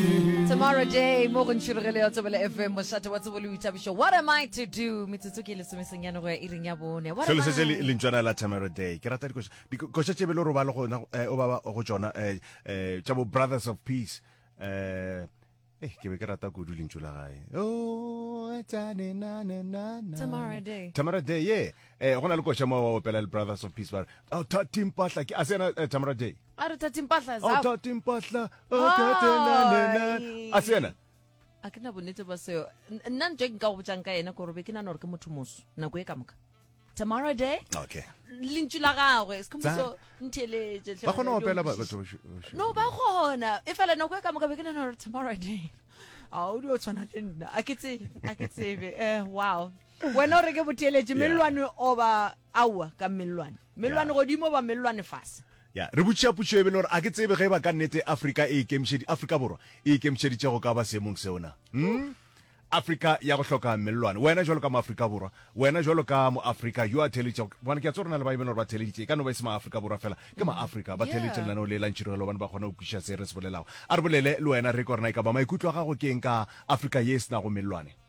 Tomorrow day, mo go ntšhiro ge le ya tsebele FM, mošate wa tsebo le boithabišo. What am I to do? Metsotso ke lesomeseng ya nogo ya iring ya bone. What Se am le setse le- I? lentšwana la tomorrow day ke rata dikoša dikoša tše be le robale go yona, eh, o baba go tšona eh, eh, tša bo brothers of peace eh, eh, ke be ke rata kudu lentšu la gae Oh, tane, na, na, na, na. Tomorrow day. Tamara Day, yeah. Eh, go na le koša mo wa opela le Brothers of Peace ba re, "Oh, thathi mpahla ke a sena eh, Tamara Day." a re thathe mpahla a zao thathe mpahla a thathe nanena a se yena a ke na bonnete ba seo N- nna ntho e nka go botsang ka ena kore be ke nana gore ke motho moso nako e ka moka tomorrow day okay lentšu la gagwe se Tsa- moso ntheletše hle ba kgona go wena, opela ba- di batho onkwešiše. ba- no ba kgona e fela nako e ka moka be ke nana gore tomorrow day a o dio tshwana le nna a ke tsebe a ke tsebe eh wow wena o re ke botheeletše mellwane oba aowa ka mellwane mellwane godimo oba mellwane fase ya re botšiša potšo e be le gore a ke tsebe ge ba ka nnete afrika e ikemišedi afrika borwa e ikemišeditše go ka ba seemong seo na hmm? afrika ya go hloka mellwane wena jalo ka moafrika borwa wena jalo ka moafrika yo a theeleditšego gobane ke a tse rona le ba e bele gore ba theeleditše e ka no ba e se maafrika borwa fela ke maafrika ba theeleditše lenaneo le la ntšhirogelo gobane ba kgona go kwišiša se re se bolelago a re bolele le wena re ke gorena e ka ba maikutlo a gago ke eng ka afrika ye e se nago mellwane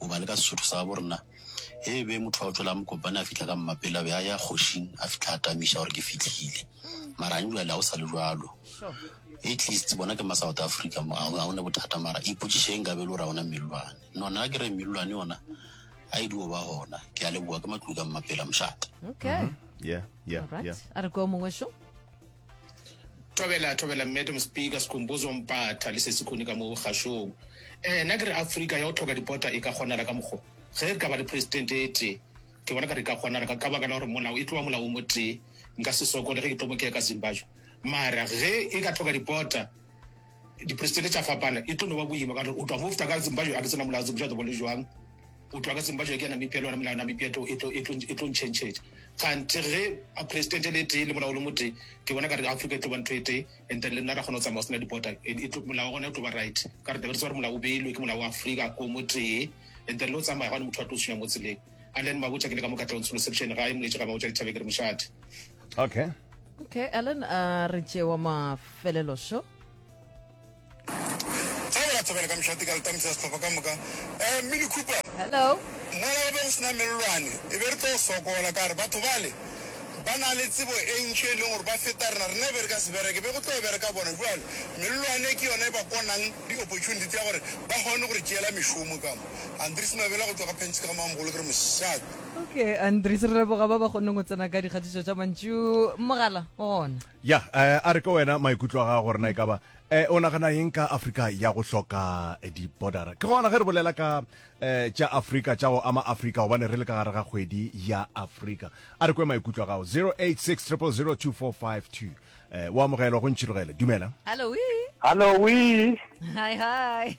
Goba le ka Sesotho sa gabo rena, ge e be motho wa go tšwela Mokopane a fihla ka mmapele, a be a ya kgošing a fihla a tamiša gore ke fihlile. Mara gane bjale ga go sa le bjalo. At least bona ke ma South Africa mo, ga go ne bothata. Mara ipotšiše ge nkabe e le gore ga go na mellwane. No, nna ke re mellwane yona ga e dio ba gona. Ke a leboga, ke Matlou ka Mmapele, mošate. Okay. Yeah, yeah, Alright. yeah. A re kwa o mongwe šo. Thobela, thobela, Madam Speaker, Sikhumbuzo Mpatha le Sesikhuni ka mo kgašong. Eh, na ke re Afrika ya go tlhoka dipota e ka kgonala ka mokgo? Ge re ka ba le president e tee, ke bona ka re ka kgonala ka ka baka la gore molao e tloa molao o mo tee. Nka se sokole ge ke tlo mo keka Zimbabwe. Mara ge e ka tlhoka dipota, Dipristele tša fapana, e tlo no ba boima ka gore o tloga mo fta ka Zimbajo a ke se na molao, Zimbajo tobole joang, o tloga ka Zimbajo ke ya Namibia le yona melao ya Namibia e tlo e tlo e tlo ntšhentšhetša. Kganthe ge a President e le tee le molao o le motee, ke bona ka re Africa e tlo ba ntho e tee and then le nna ra kgona go tsamaya go sena di-border and e tlo molao wa gona o tlo ba right ka gore tla be re tseba gore molao o beilwe ke molao wa Africa o motee and then le go tsamaya gane motho a tlo tshwenya mo tseleng. And then Mabotja ke le ka mo ka tlong solo section gae moletše ga Mabotja dithabeng ke re mošate. okay okay alan a uh, re tšewa mafelelo sho tshabela ka mšate ka letamisa setlhopha ka moka um eh, mini cooper hello mola o be go sena mellwane e be re tlo sokola ka re batho bale ba na le tsebo e ntšhi e leng gore ba feta rena rena e be re ka se bereke be go tlo bereka bona jale mellwane ke yone e ba konang di-opportunity tsa gore ba kgone gore tšeela mešomo kamo andres mabela go tswa ka pentshe ka gamamogolo ke re mošate okay andries re leboga ba ba kgoneng go tsena ka dikgatišo tša mantšu mogala o gona ya eh, a re ka wena maikutlo a ga gore na e ka ba eh, o nagana eng ka afrika ya go hloka eh, dibodara ke gona ge re bolela ka eh, tša afrika tša go ama afrika gobane re le ka gare ga kgwedi ya afrika a re kwe maikutlo a gago 086 0002452 eh, o amogelwa go ntšhirogele dumela hallo wi hallo wi hi hi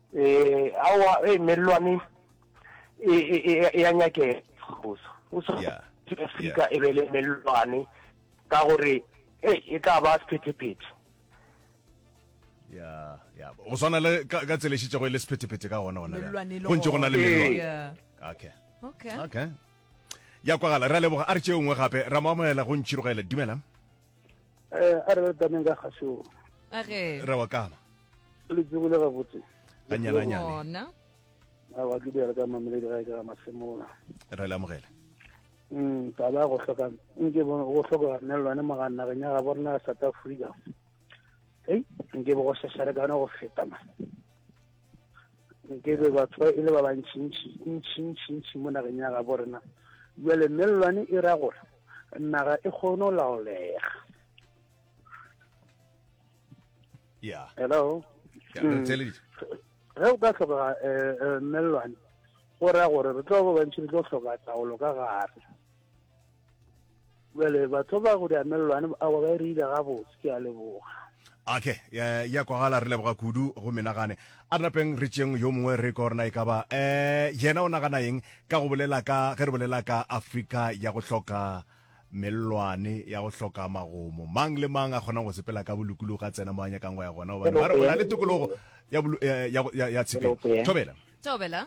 Eh, awa, eh, mellwane e, e, e, e a nyakega goso o so Yeah. afrika e be le mellwane ka gore e e tla ba sephetephete ya ya go swana le ka ka tselešitšego e le sephetephete ka gona gona Mellwane e le go ntse go na le gona. mellwane Yeah. okay Okay. okay ya kwagala re a leboga a re tšeo nngwe gape ra mo amogela go ntšhirogele dumelang eh a re re taneng ka kgašong a ge ra wa kama le tsebile gabotse ganyane ganyane gona a wa ke bjale ka mameledi ga e ka masemola ra le amogela Mm, taba ya go hloka nke bo- go hloka nelwane moganageng ya gabo rena ya south africa ei nke bo go šašarekane go feta ma nke be batho ba e le ba bantšintši ntšintšintši mo nageng ya gabo rena jale mellwane e ra gore naga e kgone go laolega yeah. hello yeah, mm. ge o ka tlhokega um eh, eh, mellwane go raya gore re tlo ba bantši re tlo tlhoka taolo ka gare Bjale batho ba go diamelelwane awa ba e reile gabotse, ke a leboga. Okay, ya, ya kwagala, re leboga kudu. Go menagane, a re napeng re tšeng yo mongwe, re kwa gore na e ka ba eh, yena o nagana eng ka go bolela ka, ge re bolela ka Afrika ya go hloka mellwane, ya go hloka magomo. Mang le mang a kgonang go sepela ka bolokologi a tsena mo a nyakang go ya gona, gobane ba re o na le tokologo ya, ya, ya, ya, ya tshepeng. Thobela. Thobela.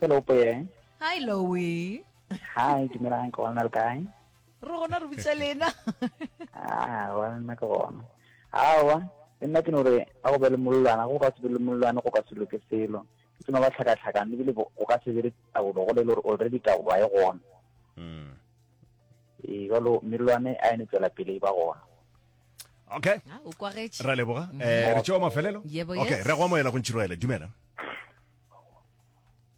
Hi, Lowe. Hi, dumelang ke gona le kae? Re gona re butsa lena. Ah, wa nna ke gona. Awa, le nna ke no re a go be le mollwana, go ka se be le mollwana go ka se loke selo. Ke tsena ba tlhakatlhakane ebile bo- go ka se be le taolo go le le gore already taolo ga e gona. Mm. Ee, jalo mellwane a ene tswela pele e ba gona. Okay. Ah, o kwagetše. Ra leboga. Eh, re tšeo mafelelo. Yebo, Okay, yes. re go amoela go ntšhiroele. Dumela.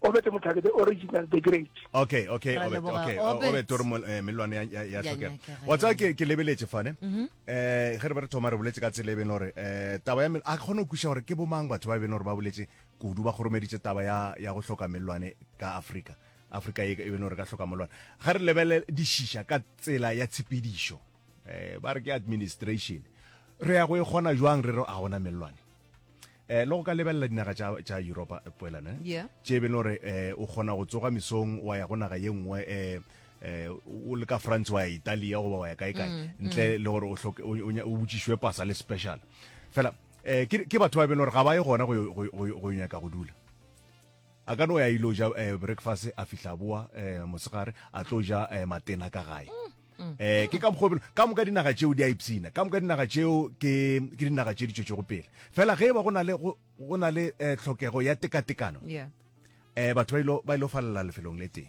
obete motlhake the original the great okay okay obete okay obete o re melwane ya tlhokega wa tsaya ke ke lebeletse fane mhm. eh ge re ba re thoma re boletse ka tsele beno re eh taba ya a khone go kusha gore ke bomang batho ba beno re ba boletse kudu ba goromeditse taba ya ya go hloka melwane ka Africa Africa e beno re ka hloka melwane ga re lebele dishisha ka tsela ya tshepedišo eh ba re ke administration re ya go e gona jwang re re a gona melwane Eh, le go ka lebelela dinaga tša tša europa eh, poelane Yeah. tše e beng le gore eh, o kgona go tsoga mesong wa ya go naga ye nngwe eh, eh, o le ka france wa ya italia goba wa ya kae kae ntle le gore o hloke- o- o nya- o botšišwe pasa le special fela eh, ke ke batho ba e beng le gore ga ba ye gona go yo- go yo- go yo- go yo nyaka go dula a ka no ya ilo ja eh, breakfast a fihla boa eh, mosegare a tlo ja eh, matena ka gae um ke ka mokgwa belo ka moka dinaga tšeo di a ipsina ka moka dinaga tšeo ke ke dinaga tše di tšwetšego pele fela ge e ba go na le go go na le eh, tlhokego ya tekatekano yeah eh batho ba ilo ba ilo falela lefelong le teng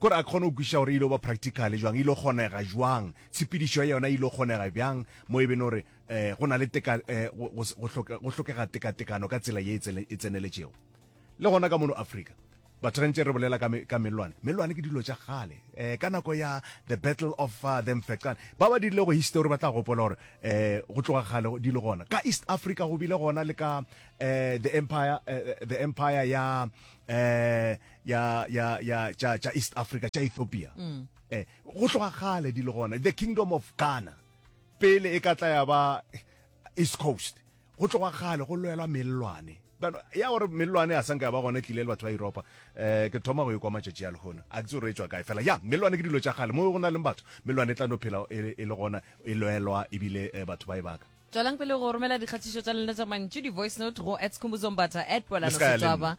kore a kgone go kwiša gore e ilo ba practical jwang e ilo kgonega jwang tshepedišo ya yona e ilo kgonega bjang mo e bene gore eh go na le teka eh, go- go se- go hloke- go hlokega tekatekano ka tsela ye e tsele- e tseneletšego Le gona ka mono Afrika, batho gantši re bolela ka melwane melwane ke dilo tša kgale um ka nako ya the battle of uh, the mfecan ba ba dirile go history ba tla gopola gore um go tloga kgale di le gona ka east africa go bile gona le ka um the empire uh, the empire ya um ya ya ya tša tša east africa tša ethiopia um go tloga kgale di le gona the kingdom of ghana pele e ka tla ya ba east coast Go tloga kgale go lwelwa mellwane. Bjalo, ya gore mellwane a sa nka ya ba gona e tlile le batho ba Yuropa, eh, ke thoma go e kwa matšatši a lehono. A ke tse gore e tšwa kae fela. Ya, mellwane ke dilo tša kgale. Mo go na leng batho, mellwane e tla no phela e, e le gona, e lwelwa ebile eh, batho ba e baka. Tšwelang pele go romela dikgathišo tša lena tša mantšu, di-voice note, go at Skhumbuzo Mbatha, at Poelano Setswaba.